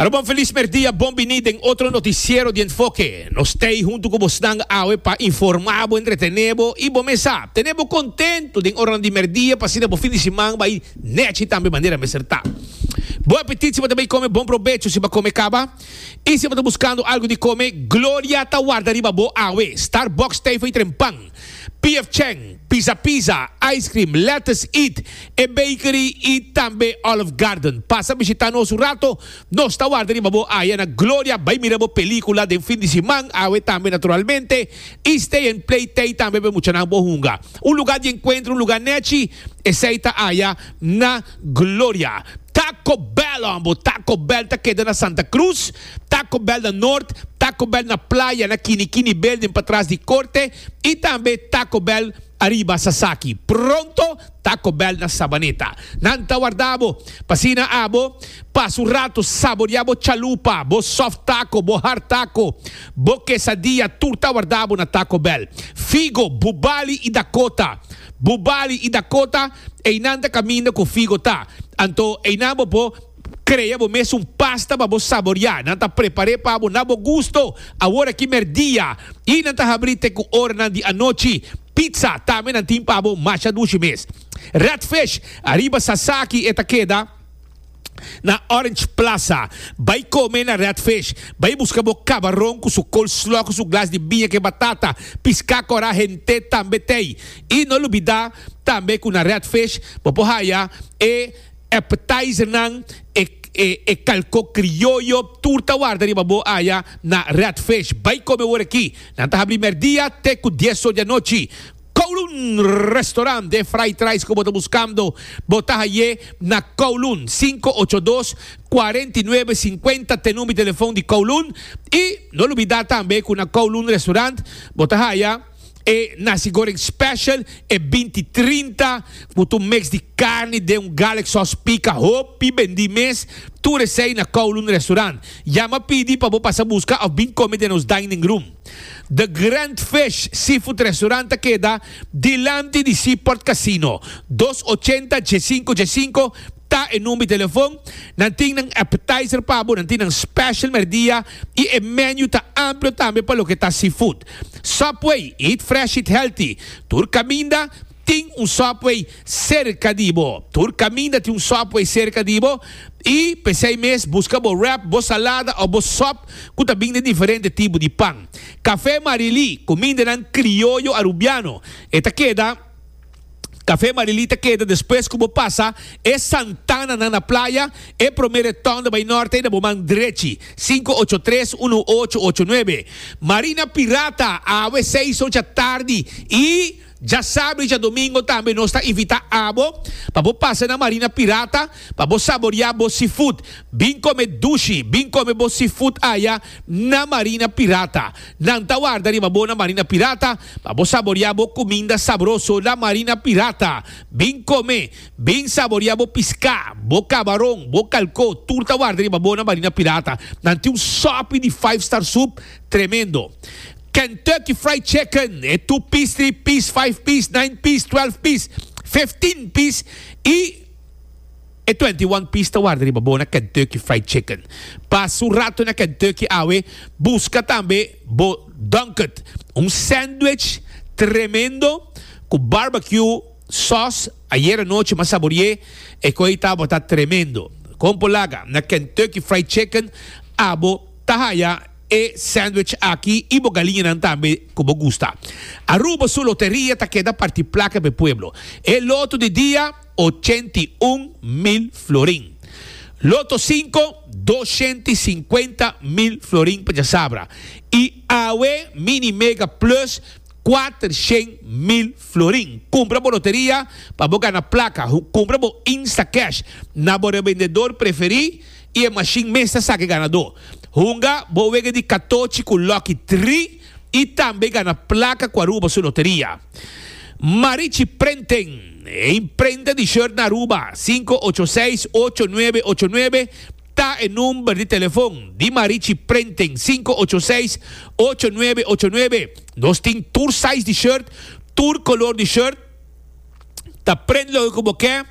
Arobo feliz merdia, bon bini den otro noticiero di Enfoke. Nos t'ei hunto cu bosnan awe pa informabo, entretenebo y bo mesa tenebo contento den oranan di merdia pa asina bo fin di siman bai nechi tambe manera mester ta. Bon apetit si bo ta bay come, bon probecho si bo a come caba y si bo ta buscando algo di come, gloria ta warda riba bo awe. Starbucks, Teifei Trempan. Pf Cheng, Pizza Pizza, Ice Cream, Lettuce Eat, e bakery y tambe Olive Garden. Pasa bishita nos un rato. Nos ta warda riba bo aya na Gloria. Bay mira bo pelicula den fin di siman awe tambe naturalmente. Y Stay and Play Tay tambe pa e muchanan bo hunga. Un lugar di encuentro, un lugar nechi, esey ta aya na Gloria. Taco Bell hombo, Taco Bell ta keda na Santa Cruz. Taco Bell na Nort, Taco Bell na Playa na Kini Kini Building patras di Corte y tambe Taco Bell ariba Sasaki. Pronto Taco Bell na Sabaneta. Nan ta warda bo, p'asina abo pasa un rato saboria bo chalupa, bo soft taco, bo hard taco, bo quesadilla, tur ta warda bo na Taco Bell. Figo, Bubali y Dakota. Bubali y Dakota, einan ta caminda cu Figo ta. Anto einan bo por. Crea bo mes un pasta pa bo saboria. Nan ta prepar'é pa bo na bo gusto, awor aki merdia i nan ta habrí te ku oranan di anochi. Pizza tambe nan tin pa bo masha dushi mes. Redfish ariba Sasaki e ta keda na Orange Plaza. Bai kome na Redfish. Bai buska bo kabaron ku su coleslaw ku su glas di biña ke batata. Piska kora hent'é tambe t'ei. I no lubida tambe ku na Redfish bo por haya e. Appetizernan, e e kalko krioyo, tur ta warda riba bo aya na Red Fish. Bai kome awor-aki. Nan ta habri merdia te ku dies so di anochi. Kowloon Restaurant, den Vrijtreis ku bo ta buskando, bo ta hai'é na Kowloon, sinku ocho dos, kuarenta i nuebe, sinkuenta t'e number di telefon di Kowloon. I no lubidá tambe ku na Kowloon Restaurant bo ta haya. E nasi goreng special e binti trinta cu tu mix di carni den un garlic sauce pica hopi bendi mes tur esey na Kowloon Restaurant. Yama pidi pa bo pasa busca of bin come den nos dining room. The Grand Fish Seafood Restaurant ta keda dilanti di Seaport Casino. Dos ochenta dje sinku dje sinku ta e number di telefon. Nan tin nan appetizer pa bo, nan tin nan special merdia y e menu ta amplio tambe pa loke ta seafood. Subway, eat fresh eat healthy, tur caminda tin un subway cerca di bo, tur caminda tin un subway cerca di bo y pesey mes busca bo wrap, bo salada o bo sop cu ta bin den diferente tipo di pan. Café Marily, cumindanan crioyo Arubiano, e ta keda. Café Marilita keda despues cu bo pasa e santananan na playa, e prome retonda bay norte na bo man drechi, sinku ocho tres unu ocho ocho nuebe. Marina Pirata, awe seis oca tardi y dja sabri djadomingo tambe nos ta invita abo pa bo pasa na Marina Pirata pa bo saboria bo seafood. Bin come dushi, bin come bo seafood aya na Marina Pirata. Nan ta warda riba bo na Marina Pirata. Pa bo saboria bo cuminda sabroso la marina pirata, bin come, bin saboria bo pisca, bo cabaron, bo calco, tur ta warda riba bo na marina pirata. Nan tin un sopi di five star soup tremendo. Kentucky Fried Chicken e two piece, three piece, five piece, nine piece, twelve piece, fifteen piece y. E twenti i wan pis ta warda riba bo na Kentucky Fried Chicken. Pasa un ratu na Kentucky awe, buska tambe bo Dunkert, un sandwich tremendo ku barbecue sòs ayer anochi mas saborié. E kos ei tabata tremendo. Kon por laga? Na Kentucky Fried Chicken abo ta haya e sandwich aki i bo galiñanan tambe ku bo gusta. Aruba su loteria ta keda parti plaka pa e pueblo e loto di dia. ochenta i un mil florin. Loto sinku, doshent i sinkuenta mil florin pa djasabra. I awe Mini Mega Plus, kuatershent mil florin. Kumpra bo loteria pa bo gana plaka. Kumpra bo Instacash na bo rebendedor preferí i e mashin mes ta saki ganadó. Hunga bo wega di katochi ku Lucky Three. y tambe gana placa cu Aruba su loteria. Marichi Prenten, e imprenta di shirt na Aruba, cinco ocho seis ocho nuebe ocho nuebe ta e number di telefon di Marichi Prenten, cinco ocho seis ocho nuebe ocho nuebe. Nos tin tur size di shirt, tur color di shirt. ta prende loke ku bo ke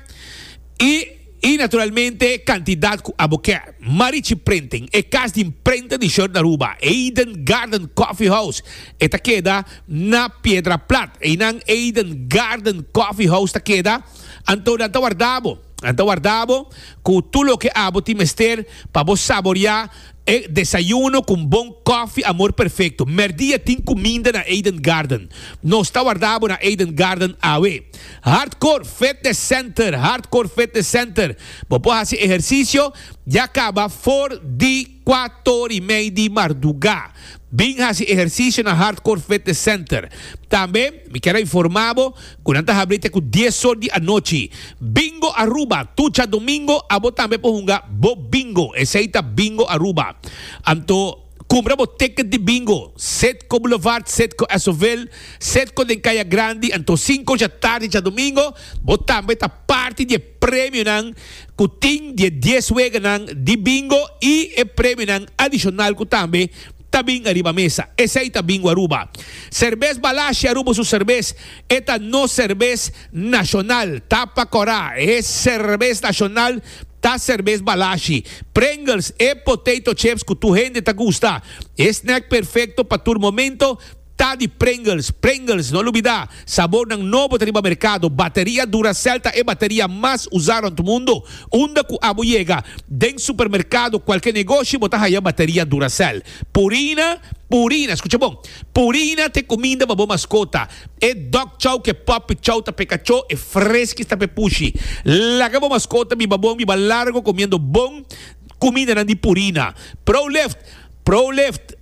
i i naturalmente kantidat ku abo ke. Marichi Printing, e kas di imprenta di short na Aruba, Eden Garden Coffee House, e ta keda na Piedra Plat. Einan Eden Garden Coffee House ta keda, anto nan ta warda bo. Nan ta warda bo ku tur loke abo tin mester pa bo saboreá E desayuno cu un bon coffee amor perfecto. Merdia tin cuminda na Eden Garden. Nos ta warda bo na Eden Garden awe. Hardcore Fitness Center, Hardcore Fitness Center. Bo por haci ehercicio ya caba for di cuatorymei di marduga. Bin hasi ehersisio na Hardcore Fitness Center. Tambe mi kier a informa bo ku nan ta habri te ku dies or di anochi. Bingo Aruba, Tucha domingo abo tambe por hunga bo bingo, esei ta Bingo Aruba. Anto kumpra bo ticket di bingo, Citgo Boulevard, Citgo Esautville, Citgo den Kaya Grandi, anto sinku djatardi djadomingo bo tambe ta parti di e. premionan ku tin di e dies weganan di bingo i e premionan adishonal ku tambe ta bin ariba mesa. Esei ta Bingo Aruba. Serbes Balashi Aruba su serbes e ta nos serbes nashonal. Ta pa kora e serbes nashonal ta serbes Balashi. Pringles, e potato chips ku tur hende ta gusta, e snack perfekto pa tur momento, Ta di Pringles, Pringles, no lubida, sabornan nobo ta riba merkado, bateria Duracell ta e bateria mas usa rond mundo, unda ku abo yega, den supermerkado, kualke negoshi bo ta haya bateria Duracell. Purina, Purina, skucha bon, Purina ta e kuminda pa bo maskota, e dog chow ku e puppy chow ta pa e kachó, e Friskies ta pa e pushi. Laga bo maskota biba bon, biba largo komiendo bon kumindanan di Purina. Pro Lift, Pro Lift.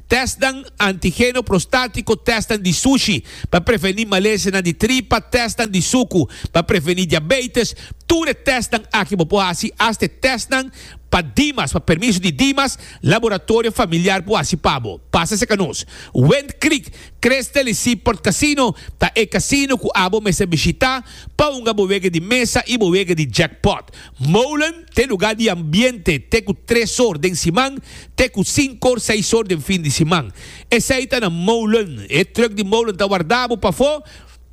tèstnan antigeno prostátiko, tèstnan di sushi pa prevení malesenan di tripa, tèstnan di suku pa prevení diabeites. Tur e tèstnan aki bo por hasi, asta e tèstnan pa Dimas, pa permiso di Dimas, laboratorio familiar por hasi pa bo. Pasa serka nos. Wind Creek Crystal y Seaport Casino ta e casino cu abo mester bishita pa hunga bo wega di mesa y bo wega di jackpot. Molen ta e lugá di ambiente te ku tres or den siman te ku sinku or seis or den fin di siman. Esei ta na molen. E trùk di molen ta wardá bo pafó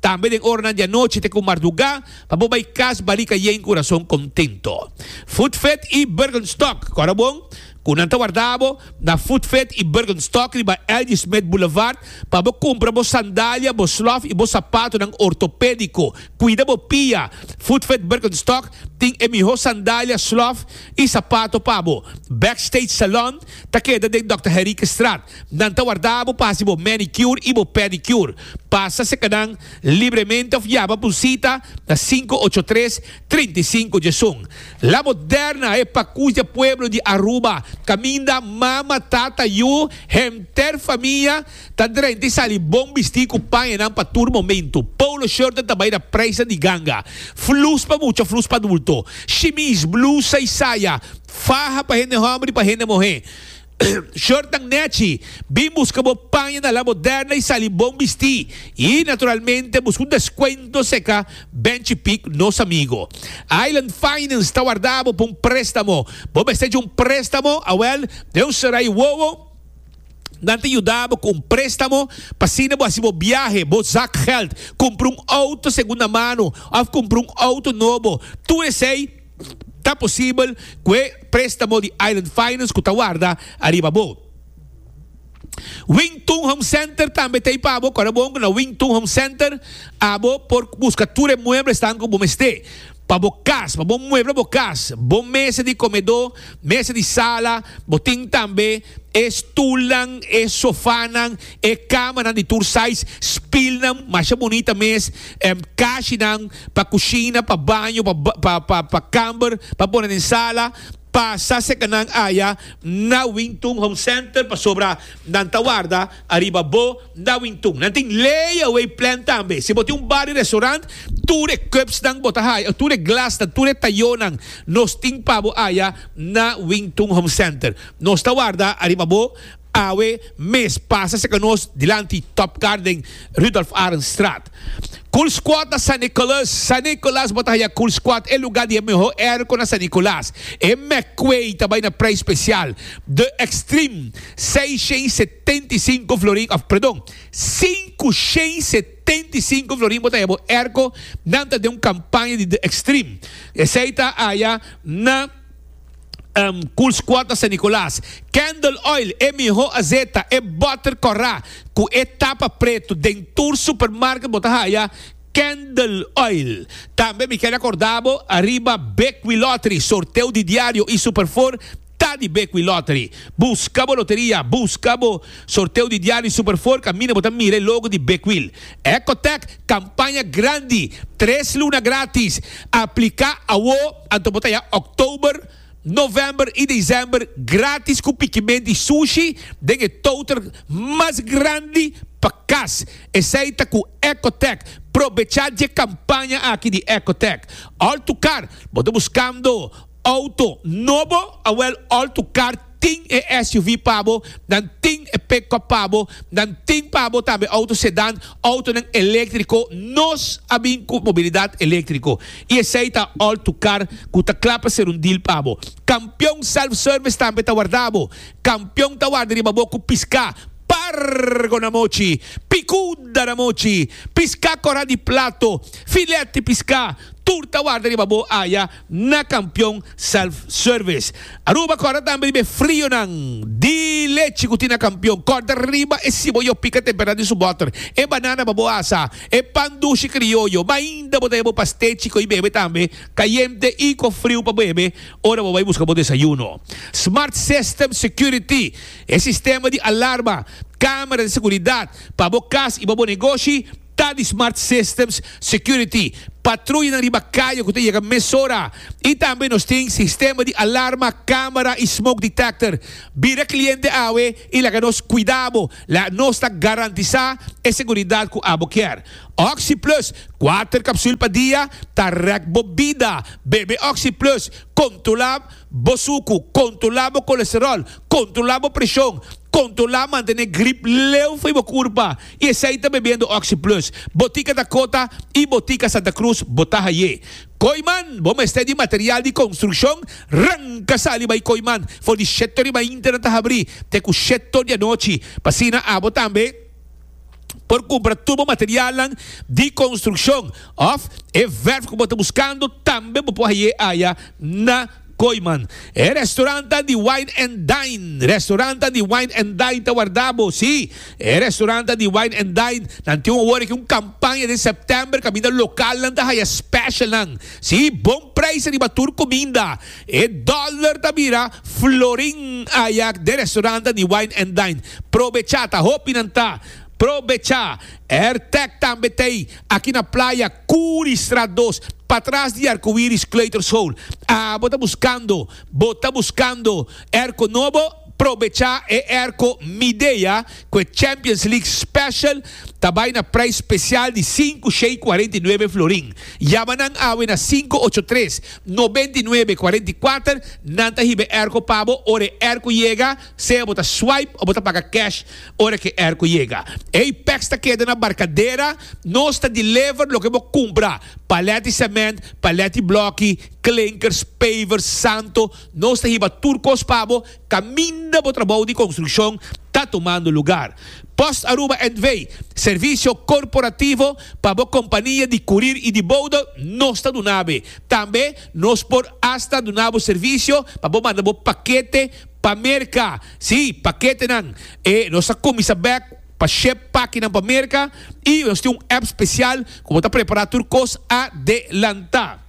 tambe den oranan di anochi te ku mardugá pa bo bai kas Barika Yei ku rason kontento. Footvet i Bergenstock, kòrda bon. Cu nan ta warda bo na Food Fit y Bergenstock riba L.G. Smith Boulevard pa bo cumpra bo sandalia, bo slof y bo sapatonan ortopedico. Cuida bo pia! Food Fit Bergenstock tin e miho sandalia, slof y sapato pa bo. Backstage Salon ta keda den Dòkter Henriquestraat. Nan ta warda bo pa haci bo manicure y bo pedicure. Pasa seca nan libremente of yama pa un cita na cinco ocho tres, Trinta i sinku dje sun, la moderna e pakushda pueblo di Aruba, kaminda mama, tata, yu, henter famia ta drenta i sali bon bistí ku pañanan pa tur momentu, polo shortnan ta bai na preisnan di ganga, flus pa mucha, flus pa adulto, shimis, blusa i saya, faha pa hende hòmber i pa hende muhé. Shortnan nechi, bin buska bo paña na La Moderna y sali bon bisti. Y, naturalmente, buska un descuento seca benchi pic nos amigo. Island Finance ta warda bo pa un prestamo. Bo mester dje un prestamo? Awel, den un sera y wowo, nan ta yuda bo cu un prestamo pa asina bo haci bo biahe, bo zakgeld, cumpra un auto segunda mano of cumpra un auto nobo. Tur esey. Ta posibel ku e préstamo di Island Finance ku ta warda ariba bo. Wing Tun Home Center tambe ta ei pa bo. Kòrda bon ku na Wing Tun Home Center abo por buska tur e mueblesnan ku bo mester pa bo kas. Pa bo muebla bo kas, bo mesa di komedó, mesa di sala, bo tin tambe e stulnan, e sofanan E kamanan di tur size, spilnan masha bunita mes, em kashinan pa kushina, pa baño, pa pa pa pa kamber, pa pone den sala, pasa sekanan aya na Wingtun Home Center pasobra nan ta warda ariba bo na Wingtun. Nan tin layaway plan tambe. Si bo tin un bar i restaurant, tur e cupsnan bo ta haya, tur e glasnan, tur e tayonan, nos tin pa bo aya na Wingtun Home Center. Nos ta warda ariba bo. Awe mes pasa seka nos dilanti Top Garden Rudolph Arend Straat. Cool Squad na San Nicolas. San Nicolas bo ta haya Cool Squad e luga di e miho airco na San Nicolas. E McQuay ta bai na prijs special. The Extreme, seis shen setenta i sinku florin, of perdon, sinku shen setenta i sinku florin bo ta haya bo airco. Nan ta den un campaña di The Extreme. Esey ta haya na. Um cool squad na San Nicolas. Candle oil, e miho azeta, e butter corra cu e tapa preto den tur supermarket bo ta haya Candle oil. Tambe mi ken a corda bo ariba Bequi Lottery, sorteo di diario y Super Four ta di Bequi Lottery. Busca bo loteria, busca bo sorteo di diario y Super Four caminda bo ta mira e logo di Bequil. Ecotec, campaña grandi, tres luna gratis. Aplica awo. Anto bo ta ya Oktober, November i Desember grátis ku pikimen di sushi den e touter mas grandi pa kas. Esei ta ku Ecotec. Probechá dje kampaña aki di Ecotec. Altukar, bo ta buskando outo nobo? Awèl Altukar tin e SUV pa bo, nan tin e pick-up pa bo, nan tin pa bo tambe auto sedán, autonan eléktriko, nos a bin ku mobilidat eléktriko i esei ta all to car ku ta kla pa ser un deal pa bo. Kampion Self Service tambe ta warda bo. Kampion ta warda riba bo ku piská pargo na mochi, pikuda na mochi, piská kora di plato, filet di piská, tur ta warda riba bo aya. na kampion self service. Aruba kòrda tambe riba e frionan di lechi ku tin na kampion. Kòrda riba e sibo yo pika temperatura di su bòter, e banana pa bo asa, e pan dushi krioyo. Mainda bo ta heba bo pastechi ko'i bebe tambe, kayente i ku friu pa bebe ora bo bai buska bo desayuno. Smart System Security, E sistema di alarma, kamera di seguridat, pa bo kas i pa bo negoshi Ta di Smart Systems Security, patruyanan riba kaya ku ta yega mesora, i tambe nos tin sistema di alarma, kamera i smoke detector. Bira kliente awe i laga nos kuida bo, la nos ta garantisá e seguridat ku abo kier. Oxi Plus, kuater kapsul pa dia, ta rèk bo bida. Bebe Oxi Plus, kontrolá. Bo suku, kontrolá bo kolesteròl, kontrolá bo preshon, kontrolá mantené grip leu for bo kurpa i esei ta bebiendo Oxi Plus. Botika Dakota i Botika Santa Cruz bo ta haye. Koiman, bo mester di material di konstrukshon? Ranka sali bai Koiman for di shetto di mainta nan ta habrí te ku shetto di anochi, pa asina abo tambe. por kumpra tur bo materialnan di konstrukshon òf e vèrf ku bo ta buskando. Tambe bo por hai'é aya na Koiman. E restorantan di Wine and Dine Restorantan di Wine and Dine ta wardá bo. Sí, e restorantan di Wine and Dine nan tin un awor aki un kampaña den sèptèmber kaminda lokalnan ta haya spèshalnan. Sí, bon preis riba tur kuminda. E dollar ta bira florin ayak den restaurantnan di wine and dine. Probechá, ta hopi nan ta. Probechá. Airtech tambe ta ei, aki na playa Curi straat dos, patras di Arcoiris Kleuterschool. Abo ta buskando? Bo ta buskando airco nobo? Probecha e erko Midea ku e Champions League Special ta bai na prijs special di sinku shei kuarenta i nuebe florin. Yama nan awe na sinku ocho tres, noventa i nuebe, kuarenta i kuater, nan ta hiba e erko pa bo ora e erko yega, sea bo ta swipe o bo ta paga cash ora ku e erko yega. Ey packs ta keda na Barcadera, nos ta deliver loke bo kumpra, palèt di sèmènt, palèt di blòki, klinkers, pavers, santo, Nos ta hiba tur kos pa bo kaminda bo trabou di konstrukshon ta tumando lugar. Post Aruba NV. Servisio korporativo pa bo kompania di kurir i di bouda nos ta duna be. Tambe nos por asta duna bo servisio pa bo manda bo pakete pa Merka. Sí, paketenan. E nos ta kuminsa bèk pa shep pakinan pa Merka i nos tin un app spesial ku bo ta prepará tur kos adelantá.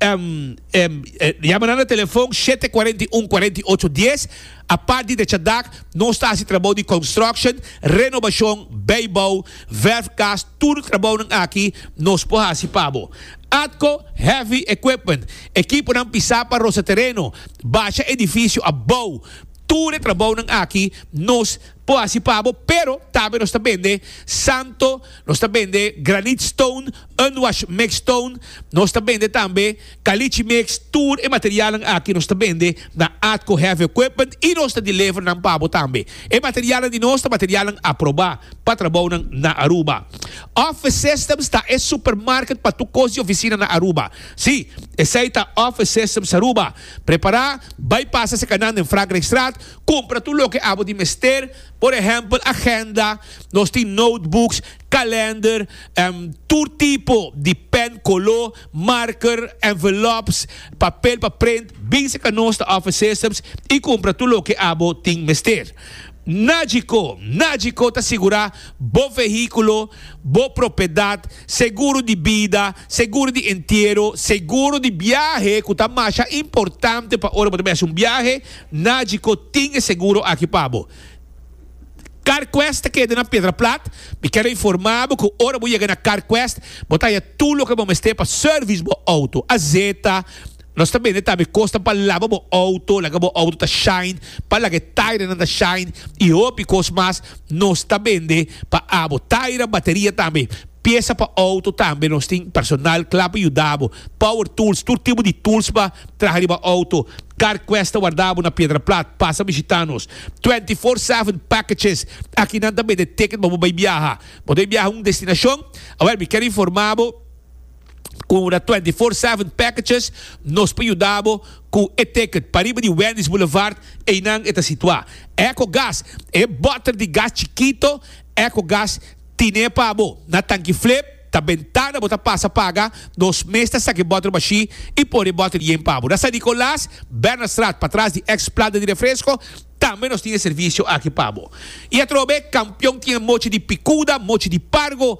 Yama nan na telefon shete kuarenta i un, kuarenta i ocho dies. Apart di dechadak, nos ta hasi trabou di construction, renobashon, beibou, verf gas, tur trabounan aki nos por hasi pa bo. Atco Heavy Equipment, ekiponan pisá pa rosa tereno, basha edifisio abou, tur e trabounan aki nos por hasi pa bo, pero tambe nos ta bende santo, nos ta bende granite stone, Unwash Mix Tone, nos ta bende tambe Caliche Mix, tur e materialnan aki nos ta bende na Atco Heavy Equipment y nos ta deliver nan pa bo tambe. E materialnan di nos ta materialnan aproba pa trabounan na Aruba. Office Systems ta e supermarket pa tur cos di oficina na Aruba. Si, esey ta Office Systems Aruba. Prepara, bay pasa se canan den Frankrijkstraat, cumpra tur loke abo di mester, por ehempel agenda, nos tin notebooks, kalender en tur tipo di pen koló, marker, envelops, papel pa print, bin seka nos ta offer systems i kumpra tur loke abo tin mester. Nagico, Nagico ta sigurá bo vehíkulo, bo propiedat, seguro di bida, seguro di entiero, seguro di biahe ku ta masha importante pa ora bo ta bihasa un biahe, Nagico tin e seguro aki pa bo. Carquest ta keda na Piedra Plat. Mi quiero informa bo cu ora bo yega na Carquest bo ta haya tur loke bo mester pa service bo auto. Azeta nos ta bende tambe cosnan pa laba bo auto, laga bo auto ta shine, pa laga e taira nan ta shine y hopi cos mas. Nos ta bende pa abo taira, bateria tambe, pieza pa auto tambe. Nos tin personal cla pa yuda bo, power tools, tur tipo di tools pa traha riba auto. Carquest ta warda bo na Piedra Plat. Pasa bishita nos. Twenty four seven packages Aki nan ta bende ticket pa bo bay biaha Bo ta bay biaha un destinacion A wel mi ker informa bo Cu ora twenty four seven packages Nos por yuda bo cu e ticket Pa riba di Wendy's Boulevard Eynan e ta situa Echo gas E botter di gas chikito Echo gas tine pa bo Na tanki flip. Ta bentana bo ta pasa paga nos mes ta saki bòter bashí i pone e bòter yen pa bo. Na San Nicolas, Bernardstraat, patras di èks planta di refresko, tambe nos tin e servisio aki pa bo. I atrobe, Kampion tin e mochi di pikuda, mochi di pargo.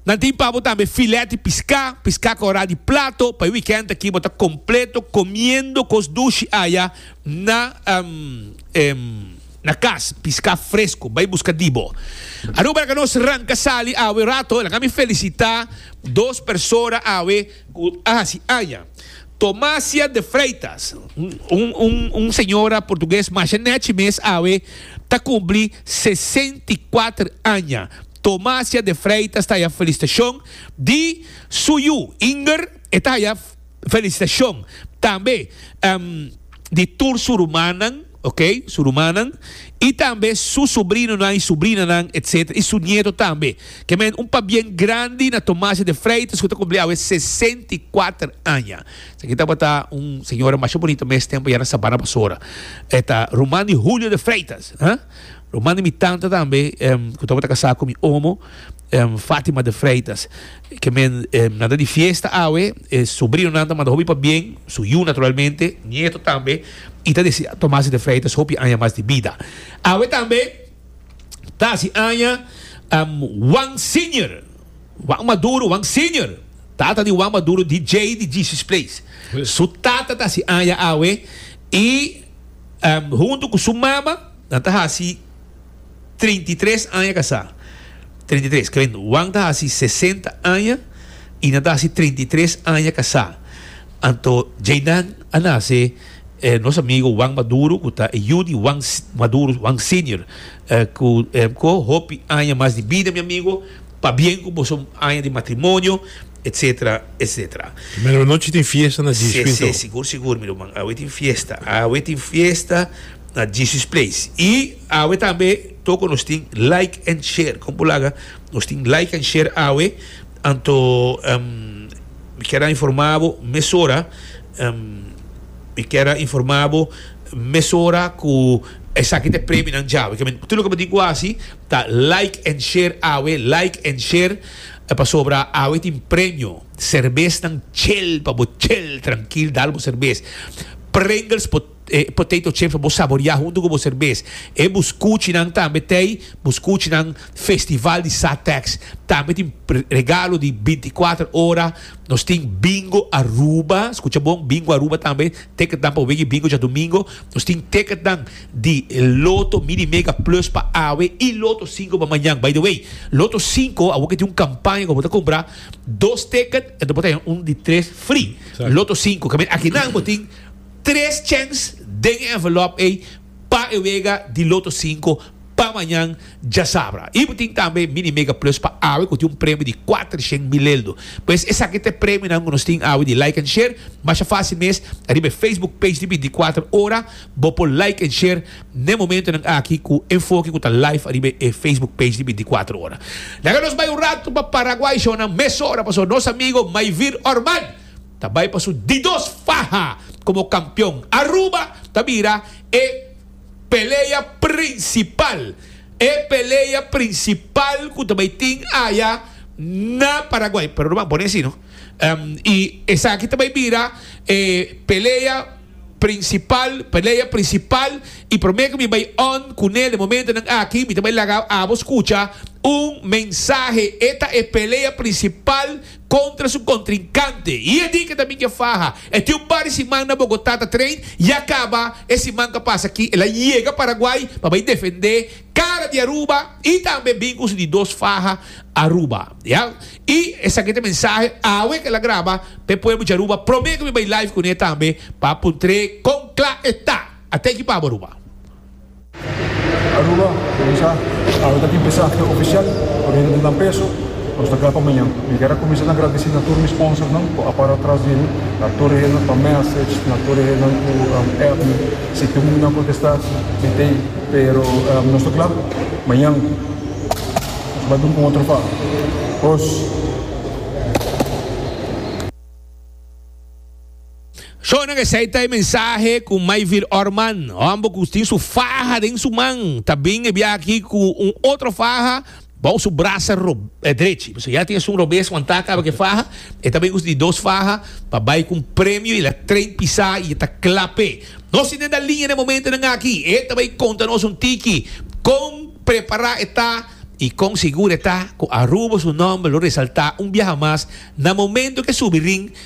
Nan tin pa bo tambe filèt di piská, piská korá di plato. Pa e wikènt aki bo ta kompleto komiendo kos dushi aya na. Na cas, pisca fresco, bay busca dibo. Aruba laga nos ranca sali awe rato, laga mi felicita dos persona awe cu a haci aña. Tomasia de Freitas, un señora portugues masha nechi mes awe ta cumpli sesenta y cuater aña. Tomasia de Freitas ta haya felicitacion di su yu Inger, e ta haya. Felicitacion tambe di tur su rumannan, ok, su rumannan y tambe su sobrinonan y sobrinanan etc. Y su nieto tambe. Ke men un pabien grandi na Tomasio de Freitas cu ta cumpli awe sesenta y kuater aña. Esaki tabata un señora masha bunita mes tempo ya na Sabana Basora. E ta ruman di Julio de Freitas, ha. Lo manda mi tanta tambe cu tabata casá cu mi omo, Fatima de Freitas. Ke men nan ta di fiesta awe, e sobrinonan ta manda hopi pa bien, su yu naturalmente, nieto tambe, y ta desea Tomasi de Freitas hopi aña mas di bida. Awe tambe ta haci aña Juan Senior, Juan Maduro, Juan Senior, tata di Juan Maduro, DJ di Jesus Place. Su tata ta haci aña awe y hunto cu su mama, Nan ta hasi treinta i tres aña kasá. Treinta i tres, keren, Juan ta hasi sesenta aña i nan ta hasi treinta i tres aña kasá. Anto Jaydan a nase e nos amigo Juan Maduro, ku ta e yu di Juan Maduro, Juan Senior, ku ko hopi aña mas di bida, mi amigo. Pabien ku boso aña di matrimonio. etc etc. Medianochi tin fiesta na Jesus Place to. Se sigur sigur mi ruman awe tin fiesta awe tin fiesta na Jesus Place y awe tambe toko nos tin like and share con bo laga nos tin like and share awe anto mi kier a informa bo mesora mi kier a informa bo mesora cu esaki ta e premio nan djave kier mi tur loke bo tin cu a haci ta like and share awe like and share E pasobra awe tin premio. Serbesnan chel pa bo chel trankil dal bo serbes. Pringles po potato chips pa bo saboria huntu ku bo serbes. E buskuchinan tambe tei buskuchinan festival di sa tax. Tambe tin regalo di binti kuater ora. Nos tin bingo Aruba, skucha bon, bingo Aruba tambe. Ticketnan pa bo bigi bingo djadumingo. Nos tin ticketnan di Loto Mini Mega Plus pa awe y Loto Cinco pa mañan. By the way, Loto Cinco awor ke tin un campaña cu bo ta cumpra dos ticket enton bo ta haña un di tres free. Exacto. Loto Cinco. Cabia akinan bo tin tres chance den e envelop ey pa e wega di Loto Cinco. pa mañan djasabra. Y bo tin tambe Mini Mega Plus pa awe cu tin un premio di cuatrocientos mileldo. Pues esaki ta e premionan cu nos tin awe di like and share. Masha facil mes, ariba e Facebook page di Binticuater Ora bo por like and share n'e momentonan aki cu enfoke cu ta live ariba e Facebook page di Binticuater Ora. Laga nos bay un rato pa Paraguay shownan mesora pasobra nos amigo Maivir Orman ta bay pa su di dos faha como campeon. Aruba ta bira e. Pelea prinsipal, E pelea prinsipal ku ta bai tin aya na Paraguay, pero no ban pone así no, i esaki ta bai bira e pelea prinsipal, pelea prinsipal i promé ku mi bai on ku nel den momentonan aki mi ta bai laga abo skucha un mensahe, e ta e pelea prinsipal. contra su contrincante y e di ke ta mingé faha e tin un par di siman na Bogotá ta train ya caba e siman ka pasa aki el a yega Paraguay pa bay defende cara di Aruba y tambe bin cu su di dos faha Aruba ya y esaki ta mensahe awe ke el a graba pe pueblo di Aruba prome ke mi bay live cune tambe pa puntr'e con cla e ta a ta ekipabu Aruba. Aruba, Kuminsá, Awe ta tin pesahe ofisial ku renta di nan peso? Nos ta kla pa mañan. Mi ker a kuminsá ta agradesí na tur mi sponsornan ku a para atras di mi, na tur hende pa message, na tur hende ku app mi. Si tur muchanan a kontestá, mi t'ei, pero nos ta kla, mañan nos bai duna un otro pa. Kos. Shonnan esei ta e mensahe cu Mayville Orman, homber cu tin su faha den su man, ta bin e bia aki cu un otro faha bao su brasa drechi. Pasobra ya tin esun robes cuando e ta caba cu e faha. E ta bin usa di dos faha pa bay cu un premio y el a train pisa y e ta cla p'e. Nos tin den da linea n'e momentonan aki. E ta bay conta nos un tiki con prepara e ta y con seguro e ta cu Aruba su nomber lo resalta un biaha mas na momento cu e subi ring.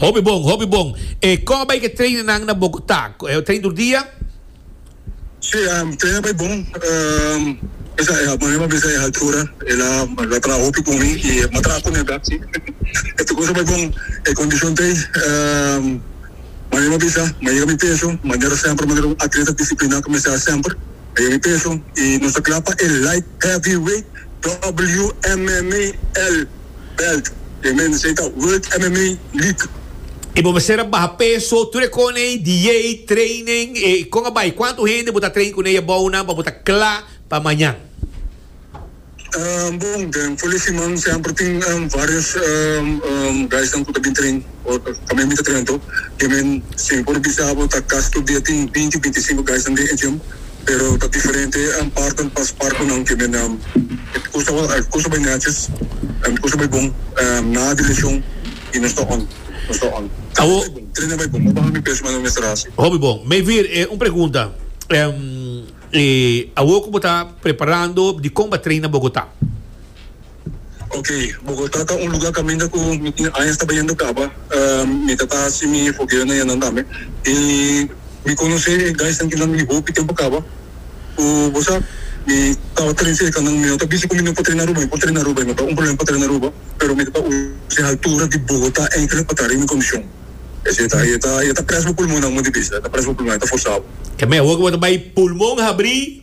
Hopi bon, hopi bon. E kò bai ke treinennan na Bogotá? E trein tur dia? Sí, treinennan bai bon. Mester a mami m'a bisa e haltura. El a traha hopi ku mi i m'a traha ku mi aká. Sí, e tur kos a bai bon. E kondishon t'ei, mami m'a bisa, m'a yega mi peso, manera semper, manera un atleta disipliná ku mester haña semper. M'a yega mi peso i nos ta kla pa e light heavyweight WMMAL. belt te un mende esei ta World MMA League. Y bo mester a baha peso, tur e con ey, diey, training, e con a bay, cuanto hende bo ta train cun ey abou nan pa bo ta cla pa mañan? Bon, den for di siman semper tin varios guys nan cu ta bin train o tambe mi ta train anto, y men si por bisa bo ta casi tur dia tin binti, binti y sinco guys nan den e gym. pero ta diferente an parten pas barkunan kende nan e kusa e kusa bai neches e kusa bai bon na di leshon y nos ta on nos ta on trena bai bon trena bai bon no baha mi peso mas no mester hasi. Hopi bon me vir e un pregunta e awo ku bo ta preparando dikon bo a treina Bogota. Ok, Bogotá ta un lugá kaminda ku mi tin añas ta bayendo kaba. Mi ta ta hasi mi fogeonan yanan tambe. I mi konosé e gaisnan kinan di hopi tempu kaba. Ku bo sa, mi tabata den serka nan. Mi no ta bisa ku mi no por trena Aruba. Mi por trena Aruba, i no ta un problema pa trena Aruba, pero mi ta ta us'e haltura di Bogotá enkele pa ta riba mi kondishon. Esei ta. E ta, e ta prèsbo pulmonnan, bo mester bisa. E ta prèsbo pulmonnan, e ta forsabo. Ke mehor ku bo ta bai pulmon habrí.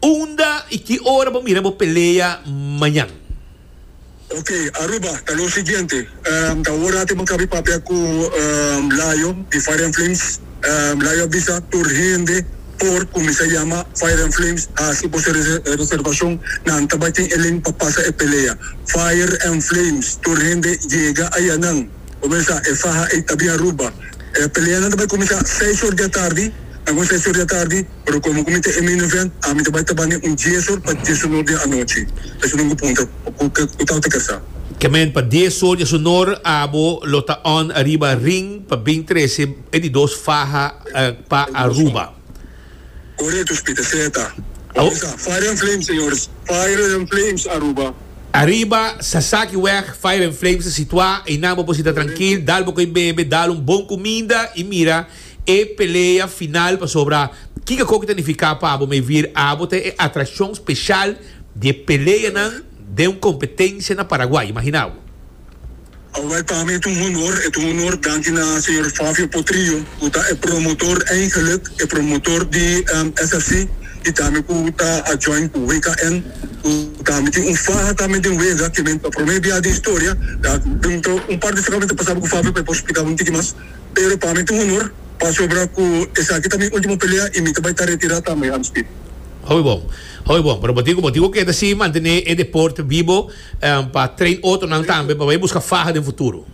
Unda y ki ora bo mira bo pelea mañan? Ok, Aruba, ta lo siguiente, ta ora tin bo caba y papia cu Layo di Fire and Flames. Layo a bisa tur hende por cuminsa yama Fire and Flames haci bo su reservacion, nan ta bay tin elen pa pasa e pelea. Fire and Flames, tur hende yega ayanan, cuminsa e faha ey ta bin Aruba. E peleanan ta bay cuminsa seis or di atardi, nan cuminsa seis or di atardi. Pero komo ku mi ta Emi Nugent, ami ta bai taba den un dies or pa dies onor den anochi. Esun ku punta, Ku tal ta kasa? Kement pa dies or dies onor abo lo ta on ariba ring pa bin trese e di dos faha pa Aruba. Korekto, Spita seta. Kòmensá. Fire and Flames, señores. Fire and Flames Aruba. Ariba Sasaki wèg, Fire and Flames ta situá. Einan bo por sita trankil, dal bo ko'i bebe, dal un bon kuminda i mira. E pelea final pasobra kiko koke ta nifiká pa abo mevir abo ta e atrakshon speshal di e peleanan den un kompetensia na Paraguay. Imaginá bo. Awor pa mi et un honor, et un honor danki na señor Fabio Potrillo ku ta e promotor eigenlik, e promotor di SFC i tambe ku ta a join ku WKN ku tambe tin un faha tambe den wega ke men pa prome bia den historia ta bin ta un par di frekamento pasado ku Fabio pa e por splikabo un tiki mas. pero pa mi ta un honor pasobra cu esaki ta mi ultimo pelea y mi ta bay ta retira tambe, Hans Piet. Hopi bon, hopi bon, pero bo tin cu bo tin cu keda si mantene e deporte bibo pa train otronan tambe pa bay busca faha den futuro.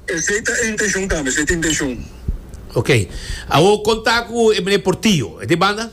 Esey ta e intencion tambe, esey ta e intencion. Ok, awor con ta cu e meneer Portillo, e ta e banda?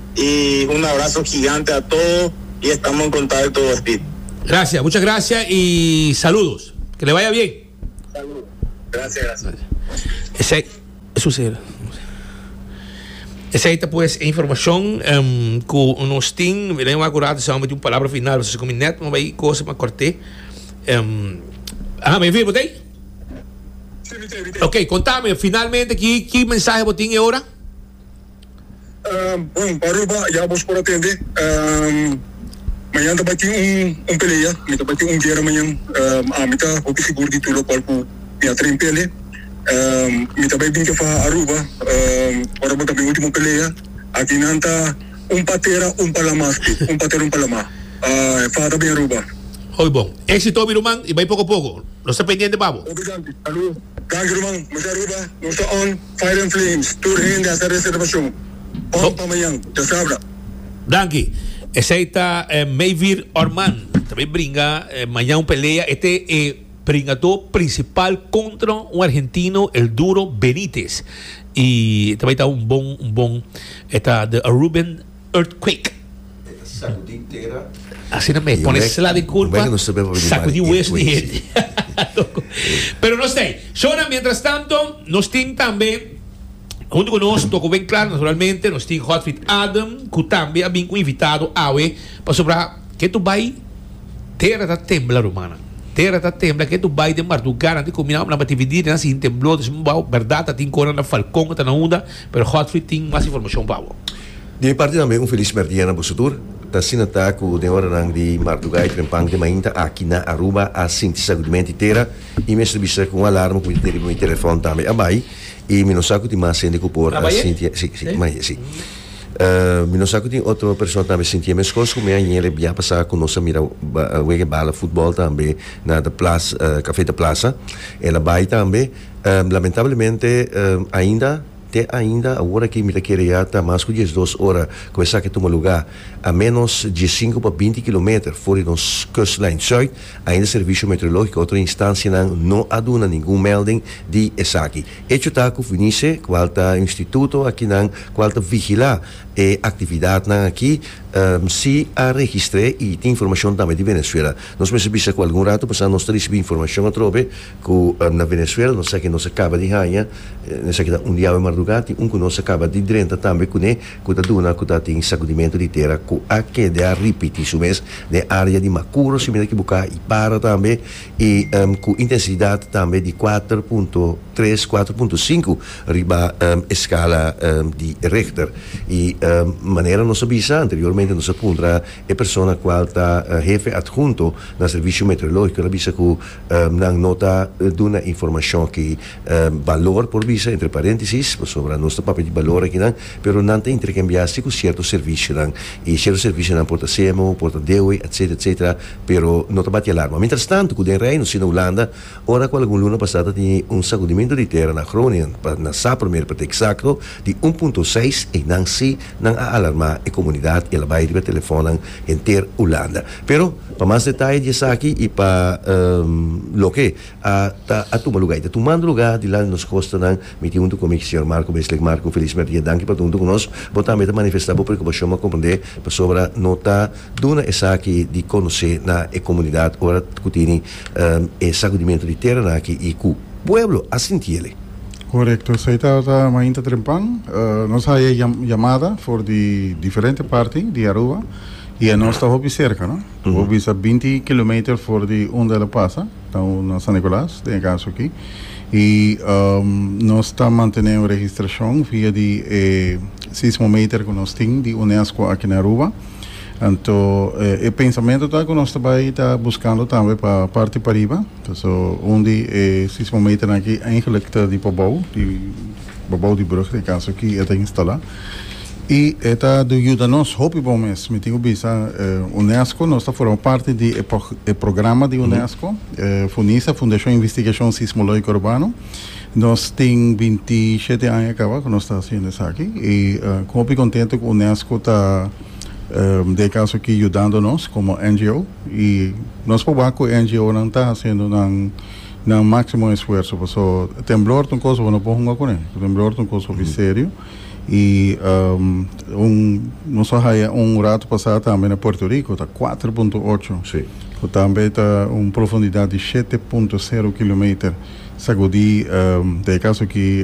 y un abrazo gigante a todo y estamos en contacto Speed. Gracias, mucha gracias y saludos. Que le vaya bien. Saludos. Gracias, gracias. Esey, eso se era. Esey ta pues informacion um, cu nos tin, miren wa curado sa un palabra final, pues como net mo bay cosa ma corte. Um, ah, me vi botei? Ok, contame finalmente que que mensaje botin e ora? Bon, pa Aruba ya bos por a tende, mañan ta bai tin un pelea, mi ta bai tin un guera mañan, ami ta hopi sigur di tur lokual ku mi a tren pele, mi ta bai bin ke faha Aruba, ora bo ta mi ultimo pelea, aki nan ta un pa tera un pa lama aspi, un pa tera un pa lama, e faha ta bin Aruba. Oy bon. Éxito obi ruman i bai poko poko. Nos ta pendiente pa bo. Obrigal. Danki ruman. Mester Aruba nos ta on. Fire and Flames, tur hende a hasi reservashon òf pa mañan, ya sabra. Danki. Esei ta Meyvir Orman, ta bay bringa mañan un pelea e te e bringadó principal contra un argentino El Duro Benitez y ta bay ta un bon un bon e ta de Aruben. earthquake. E ta sakudi tera. Asina mes, pone sla di kurpa, sakudi wesu di hende. Toko. Pero nos tei. Shona, mientras tanto, nos tin tambe, huntu ku nos, toko ben klar, naturalmente, nos tin Godfried Adam, ku tambe a bin ku invitado awe, pasobra ke tur bai, tera ta tembla, rumannan. Tera ta tembla, ke tur bai den marduga, nan tin ku mira hombrenan tabata dividí, nan siña temblor, nan siña bou, bèrdat, ta tin kor nan na Falkon, ta na unda. Pero Godfrey tin mas informacion pa bo. Di mi parti tambe un feliz primer dia na boso tur. Ta asina ta cu den oranan di mardugá e tren pan di mainta aki na Aruba a sinti sagudimento di tera y mi a ser bisa cu un alarma cu mi ta tin riba mi telefon tambe a bai y mi no sa cu tin mas hende cu por a sinti e si, si, maye, si. Mi no sa cu tin otro persona tambe sinti e mescos cu mi añe el e bia pasá cu nos a mira wega e bala futbol tambe na de plaza, Café de Plaza. El a bai tambe. Lamentablemente ainda, te ainda awor aki mi ta kere ya ta mas ku diesdos ora ku esaki tuma lugá, a ménos diesinku pa binti kilometer for di nos kustlijn Zuid, ainda Servicio Meteorológico i otro instansianan no a duna ningun melding di esaki. Echo ta ku Vunice, kual ta un instituto akinan kual ta vigilá e aktividatnan aki, si a registr'é i tin informashon tambe di Venezuela. Nos mester bisa ku algun ratu pasá nos ta risibí informashon atrobe Ku na Venezuela nos sa ke nos a kaba di haña esaki ta un diabel mardugá, tin un ku nos a kaba di drenta tambe kuné ku ta duna ku ta tin sakudimentu di tera ku a keda a ripití su mes den área di Makuro siminda ki Buká i Para tambe i ku intensidat tambe di kuater punto tres, kuater punto sinku riba e skala di Richter. I manera nos a bisa anteriormente nos a puntra e persona kual ta hefe adhunto na Servisio Meteorológiko el a bisa ku Nan no ta duna informashon ki balor por bisa entre parentesis pasobra nos ta papia di balor akinan pero nan ta interkambiá si ku sierto servisionan i sierto servisionan por ta semo por ta dewe etsetera etsetera pero no ta bati alarma mientrastantu ku den Reino si na Hulanda ora ku algun luna pasá ta tene un sakudimentu di tera na Groningen pa na sa primer pa ta eksakto Di un punto seis, einan sí nan a alarmá e komunidat i el a bai riba telefònnan henter Hulanda. Pero, pa mas detaye di esaki i pa loke a ta a tuma lugá i ta tumando lugá dilanti di nos kostanan, mi tin huntu ku mi señor Marco Beslek. Marco, Feliz Mertie, danki pa ta huntu ku nos. Bo tambe ta manifestá bo preokupashon, bo a komprendé pasobra no ta duna esaki di konosé na e komunidat ora ku tini e sakudimentu di teranan aki i ku pueblo a sintiele. Korekto, esei ta mainta trempan. Nos haya yamada for di diferente parti di Aruba i e nos ta hopi serka, no. Bo por bisa binti kilometer for di unda el a pasa, ta na San Nicolas den e kaso aki. I nos ta mantene un registrashon via di e sismometer ku nos tin di Unesco aki na Aruba. Anto e pensamentu ta ku nos ta bai ta buskando tambe pa parti pariba. So un di e sismometernan aki eigenlijk ta di bobou, di bobou di brug, den caso aki e ta instala. Y e ta do yuda nos hopi bon mes. Mi tin cu bisa UNESCO, nos ta forma parti di e programa di UNESCO, Funisa, Fundacion Investigacion Sismologico Urbano. Nos tin binti shete aña caba cu nos ta haciendo esaki y cu hopi contento cu UNESCO ta. den caso aki yudando nos como NGO y nos por wak cu NGOnan ta haciendo nan maximo esfuerzo paso temblor ta un cosa cu no por hunga cune temblor ta un cosa hopi serio y nos a haya un rato pasa tambe na Puerto Rico ta cuater punto ocho cu tambe ta un profundidad di shete punto sero kilometer sagudi den e caso aki.